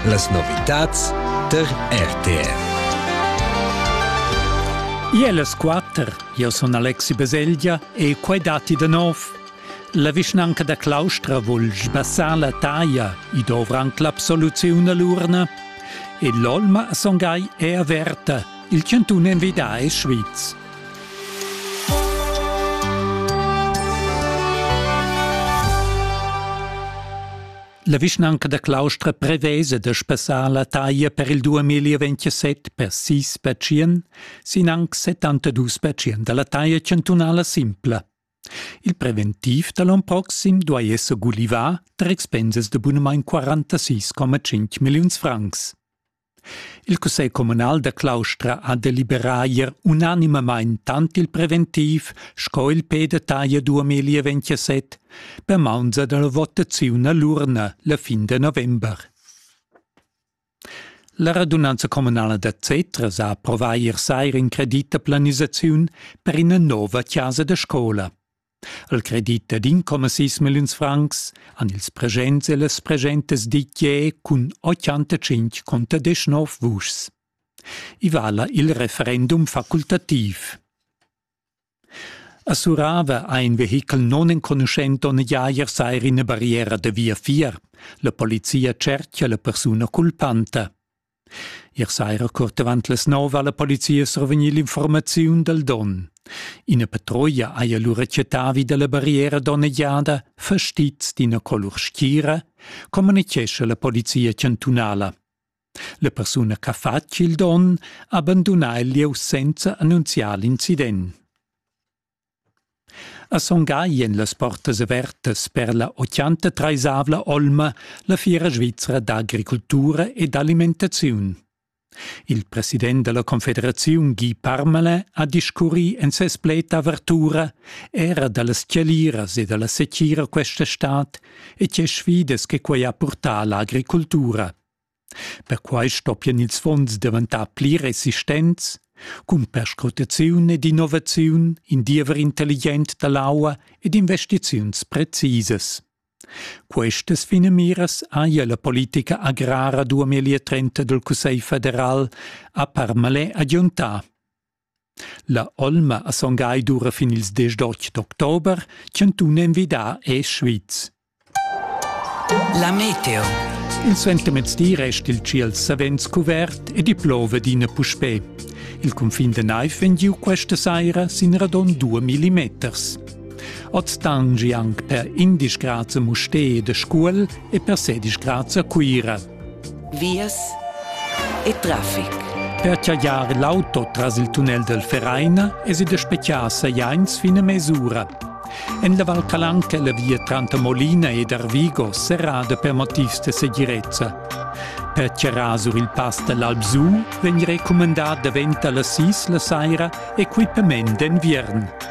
Las novitads tar RTF. Ier las quatter, io sun Alexi Baselgia e quai datti da nov. La vischnanca da Claustra vul sbassar la taglia, i dovrant l'absoluziun all'urna. E l'olma songai è averta, il chantun envida e Schwyz. La vischnanca da Claustra prevesa da spassar la taglia per il 2027 per sis pacient sin anc 72 pacient da la taglia chantunala simpla. Il preventiv da l'on proxim duai esser gulivà tar expensas da bunamain 46,5 milliuns francs. Il cussegl communal da Claustra ha deliberà ier unanimamain tant il preventiv sco il pe da taglia 2027 per maunza da la votaziun a l'urna la fin da november. La radunanza communala da Zetres ha approvà ier saira in credit da planisaziun per ina nova chasa da scola. al credit dad incomma sis milliuns francs han ils presents e las presentas dit jeu cun 85 conter 19 vuschs. I vala il referendum facultativ. Assurava ha in vehichel non enconuschent on Jair seir ina barriera da via 4. La polizia cerchia la persuna culpanta. Ier saira curt avant las nov ha la polizia survegnì l'informaziun dal donn. Ina patrulla haja lura chattà vi da la barriera donnegiada fastizs d'ina colur schira, communitgescha la polizia chantunala. La persuna che ha fatg il donn ha bandunà il lieu senza annunziar l'incident. A Son Gagl èn las portas avertas per la otganta treisavla olma la fiera svizra d'agricultura e d'alimentaziun. Il president da la Confederaziun Guy Parmelin ha discurrì en ses pled d'avertura era da las tgeliras e da la setgira questa stad e tge sfidas che quai ha purtà a l'agricultura. Perquai stoppian ils fonds daventar pli resistents cun perscrutaziun ed innovaziun, in diever intelligent da l'aua ed investiziuns precisas. Questas finamiras haja la politica agrara 2030 dal Cussegl federal a Parmalais agiuntà. La olma a Son Gagl dura fin ils desch d'otg d'october. Chantun envidà è Schwyz. La meteo. Il sentimezdi resta il tschiel savens cuvert ed i plova d'ina puspè. Il cunfin da naiv vegn giu questa saira sin radon 2 mm. Oz tangi anc per 11 grads a Mustér da Scuol e per 16 grads a Cuira. vias e traffic. Per chagliar l'auto tras il tunnel del Vereina es id a spechiar sajains fin a mesura. En la Val Calanca la via tranter Molina ed Arvigo serrada per motivs de segirezza. Per charrar sur il pass dall'Alpsu vegn recumandà davent alla sis la saira equipament d'enviern.